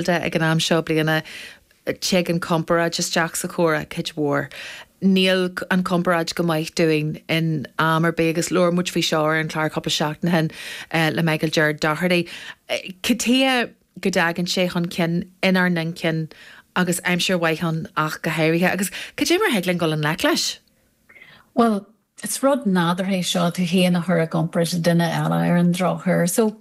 de ag an am seo bliana. Tig an chomparáid isteach sa chomhrá, cuid mhór. Níl an chomparáid go maith dúinn in am ar bith agus labhair muid faoi seo ar an chlár cúpla seachtain ó shin le Michael Ger Doherty. cad chuige a dtagann sé chun cinn inár n-inchinn agus aimsir mhaith ann ach go háirithe. Agus cad é mar a thig linn dul i ngleic leis? Bhuel, is rud nádúrtha é seo, tú féin a chur i gcomparáid le duine eile, ar an drochuair. So,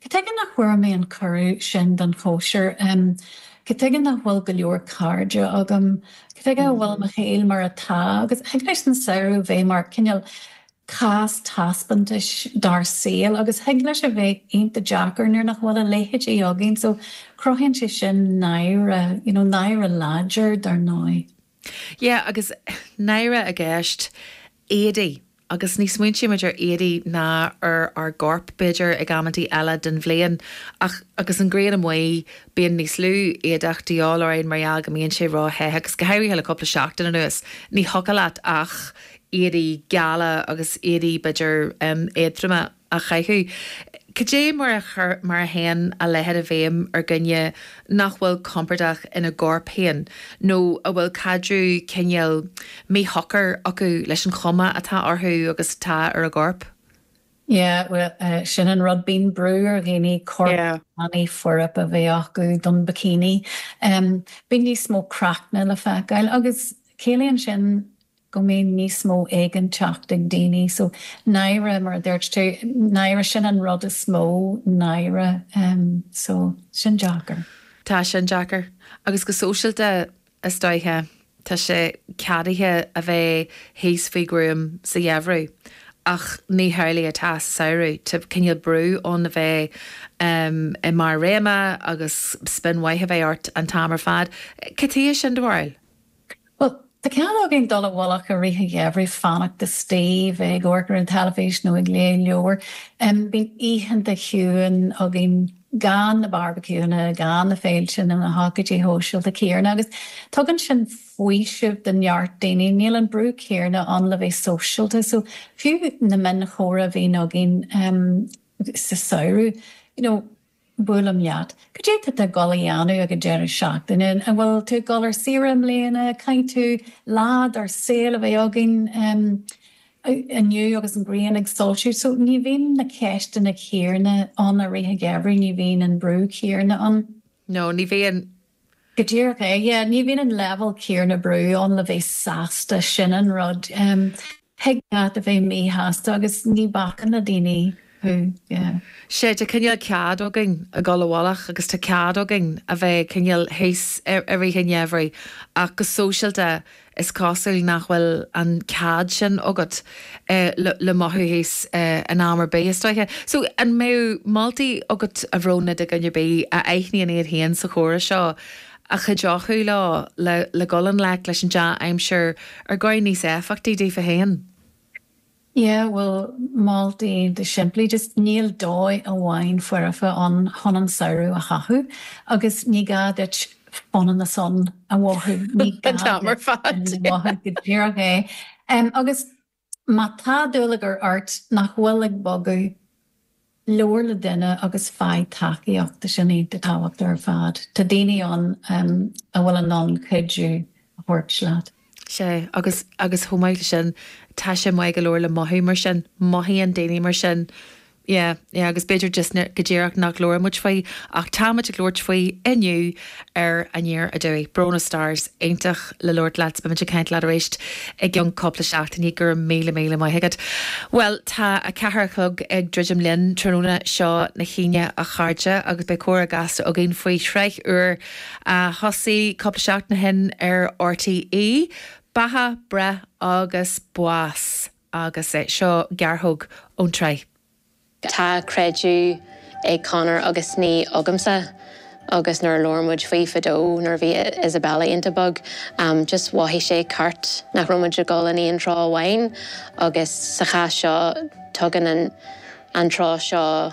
Cad chuige nach bhfuair mé an cuireadh sin don chóisir. Cad chuige nach bhfuil go leor cairde agam. Cad chuige a bhfuil mo shaol mar atá. Agus thig leis an samhradh a bheith mar, cineál, cás taispeántais dár saol. Agus thig leis a bheith iontach deacair nuair nach bhfuil a leithéid againn. So, cruthaíonn sé sin náire, you know, náire láidir, dar ndóigh. Yeah agus náire i gceist éadaí agus ní smaointímid ar éadaí ná ar ár gcorp b'fhéidir ag amanntaí eile den bhliain ach agus an ghrian amuigh bíonn níos lú éadach de dhíth orainn mar gheall go mbíonn sé róthe agus go háirithe le cúpla seachtain anuas ní thiocfadh leat ach éadaí geala agus éadaí b'fhéidir éadtroma. a chaitheamh. Cad é mar a théann a leithéid i bhfeidhm ar dhuine nach bhfuil compordach ina gcorp féin nó a bhfuil caidreamh cineál míshocair acu leis an chuma atá orthu agus atá ar a gcorp? Yeah, bhuel, sin an rud, bíonn brú ar dhaoine corp tanaí foirfe a bheith acu don bikini. Bíonn níos mó craicne le feiceáil agus ciallaíonn sin go mbíonn níos mó éiginnteacht ag daoine so náire mar a dúirt tú náire sin an rud is mó náire em so sin deacair. Tá sin deacair. Agus go sóisialta is dóiche tá sé ceadaithe a bheith thíos faoi ghruaim sa gheimhreadh ach ní hamhlaidh atá sa samhradh. Tá cineál brú ann a bheith em i mbarr do réime agus spion maith a bheith ort an t-am ar fad. Cad chuige sin do bharúil? Bhuel, tá cead againn dul i bhfolach i rith an gheimhridh, fanacht istigh, bheith ag amharc ar an teilifís nó ag léamh leabhair. Bíonn oícheanta ciúine againn gan na barbaiciúnna, gan na féilte nó na hócáidí sóisialta céanna agus tugann sin faoiseamh do neart daoine. Níl an brú céanna ann le bheith sóisialta so fiú na mionchomhráite a bhíonn againn sa samhradh, you know, Buailim leat. Cad é tá tú ag dul a dhéanamh ag an deireadh seachtaine? An bhfuil tú ag dul ar saoire i mbliana? Caithfidh lá dár saol a bheith againn inniu agus an ghrian ag soilsiú. So ní bhíonn na ceisteanna céarna ann i rith an gheimhridh, ní bhíonn an brú céarna ann. No, ní bhíonn. Go díreach é. Yeah, ní bhíonn an leibhéal céanna brú ann le bheith sásta, sin an rud. Thig leat a bheith míshásta agus ní bhacann na daoine leat, yeah. Sea, tá cineál cead againn a dhul abhaile agus tá cead againn a bheith cineál thíos i rith an gheimhridh ach go sóisialta Is cosúil nach bhfuil an cead sin agat le mothú thíos in am ar bith, is dóigh. So, an mbeadh moltaí agat, a Bhróna, do dhuine ar bith a aithníonn iad féin sa chomhrá seo a chuideodh leo le dhul i ngleic leis an dea-aimsir ar dhóigh níos éifeachtaí daofa féin? Yeah, bhuel, moltaí go simplí, just níl dóigh amháin foirfe ann chun an samhradh a chaitheamh agus ní gá duit Fána na Sun a mhothú, an t-am ar fad. Go díreach é. Agus má tá dúlagar ort nach bhfuil ag bogadh, Labhair le duine agus faigh tacaíocht, sin é an tábhacht ar fad. Tá daoine ann a bhfuil in ann cuidiú a thabhairt leat. Sea, agus, agus chomh maith le sin, tá sé maith go leor le mothú mar sin, mothaíonn daoine mar sin. Yeah, yeah, agus b'fhéidir just go díreach nach labhraímid faoi, ach táimid ag labhairt faoi inniu, ar Aniar Aduaidh. Bróna Starrs, iontach le labhairt leat, beimid ag caint leat arís i gceann cúpla seachtainí, go raibh míle míle maith agat. Bhuel, tá a ceathair a chlog ag druidim linn, tráthnóna seo na hAoine a chairde, agus beidh comhrá gasta againn faoi shraith úr a thosaigh cúpla seachtain ó shin ar RTÉ, Beatha, Breith agus Bás, agus seo gearrthóg ón tsraith. Tá creideamh ag Conor agus ní agamsa agus nuair a labhair muid faoi fadó nuair a bhí Isabella iontach beag just mhothaigh sé ceart nach raibh muid ag dul in aon treo amháin agus sa chás seo tugann an treo seo